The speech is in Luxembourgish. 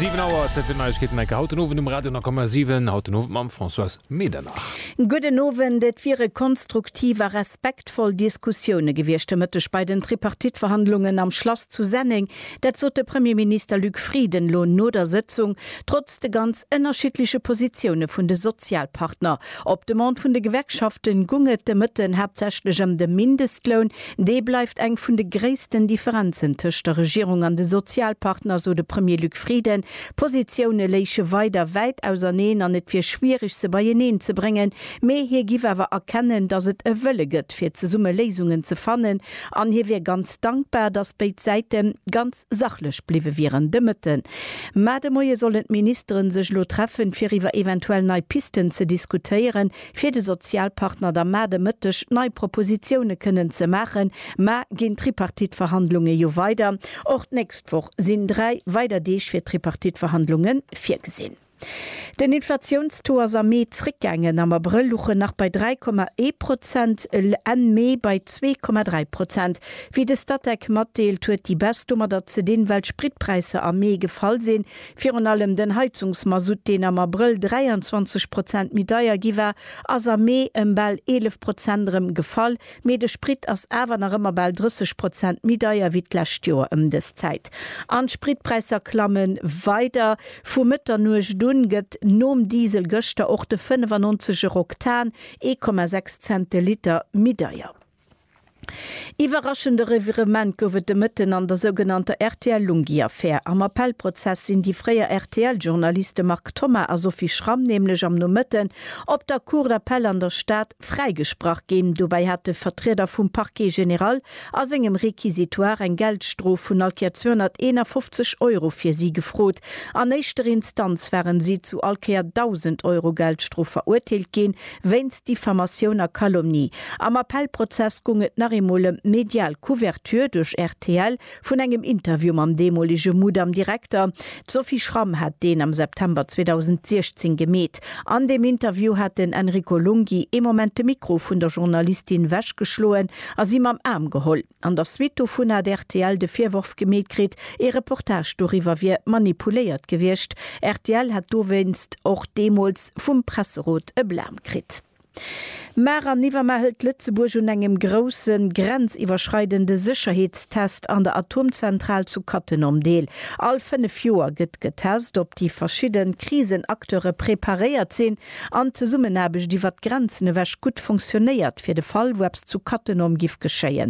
Siwen Auer, Zäit fir d'Neiegkeeten, enke haut den Owend um Radio 10,7. Haut den Owend mam Françoise Medernach. Gudden Owend. Et wiere konstruktiv a respektvoll Diskussioune gewiescht de Mëtteg bei den Tripartite-Verhandlungen am Schlass zu Senneng. Dat sot de Premierminister Luc Frieden elo no der Sëtzung, trotz de ganz ënnerschiddleche Positioune vun de Sozialpartner. Op Demande vun de Gewerkschaften gung et de Mëtten haaptsächlech ëm de Mindestloun, Dee bleift eng vun de gréissten Differenzen tëscht der Regierung an de Sozialpartner, sou de Premier Luc Frieden. D'Positioune léiche weider wäit auserneen an et wier schwiereg se beieneen ze bréngen. Mee hie giff awer erkennen, datt et e Wëlle gëtt fir zesumme Léisungen ze fannen an hie wier ganz dankbar, datt béid Säite ganz sachlech bliwwe wieren. De Mëtten, mar de Moie sollen d'Ministere sech elo treffen, fir iwwer eventuell nei Pisten ze diskutéieren. fir de Sozialpartner da mar de Mëtteg nei Propositioune kënnen ze maachen, mar ginn d'Tripartite-Verhandlunge jo weider. Och d'nächst Woch sinn dräi weider Deeg fir d'Tripartite-Verhandlunge virgesinn. Den Inflatiounstaux ass am Mee zréckgaangen, am Abrëll luch en nach bei 3,1 Prozent, Enn Mee bei 2,3 Prozent. Wéi de Statec matdeelt, huet déi Baisse domadder ze dinn, well d'Spritpräisser am Mee gefall sinn, Virun allem den Heizungsmasutt, deen am Abrëll 23 Prozent méi deier gi war, ass am Mee ëm bal 11 Prozent erëm gefall. Mee de Sprit ass awer nach ëmmer bal 30 Prozent méi deier wéi d'lescht Joer ëm dës Zäit. An d'Spritpräisser klamme weider. Vu Mëtternuecht un gëtt nom Diesel gëschter och de 95 Eroktan ee Komma sechs Cent de Liter méi deier. Iwwerraschende Revirement gouf et de Mëtten an der sougenannter RTL-Lunghi-Affär. Am Appellprozess sinn déi fréier RTL-Journaliste Marc Thoma a Sophie Schramm nämlech am Nomëtten op der Cour d'Appel an der Stad fräigesprach ginn. Dobäi hat de Vertrieder vum Parquet général a sengem Réquisitoire eng Geldstrof vun all Kéier 251 Euro fir si gefrot. An éischter Instanz waren si zu all Kéier 1.000 Euro Geldstrof verurteelt ginn. Wéinst Diffamatioun a Calomnie. Am Appellprozess gung et nach eemol ëm d'medial Couverture duerch rtl vun engem Interview mam deemolege Mudam-Direkter. D'Sophie Schramm hat deen am September 2016 gemeet. An deem Interview hat den Enrico Lunghi ee Moment de Mikro vun der Journalistin wechgeschloen a si mam Aarm geholl. An der Suite dovun hat rtl de Virworf gemeet kritt, ee Reportage doriwwer wier manipuléiert gewiescht. Rtl hätt dowéinst och deemools vum Presserot e Blam kritt. Mar an iwwermar hëlt Lëtzebuerg un engem grousse grenziwwerschreidende Sécherheetstest an der Atomzentral zu Cattenom deel. All fënnef Joer gëtt getest, ob déi verschidde Krisenacteure preparéiert sinn an d'Zesummenaarbecht iwwer d'Grenzen ewech gutt funktionéiert, fir de Fall, wou eppes zu Cattenom giff geschéien.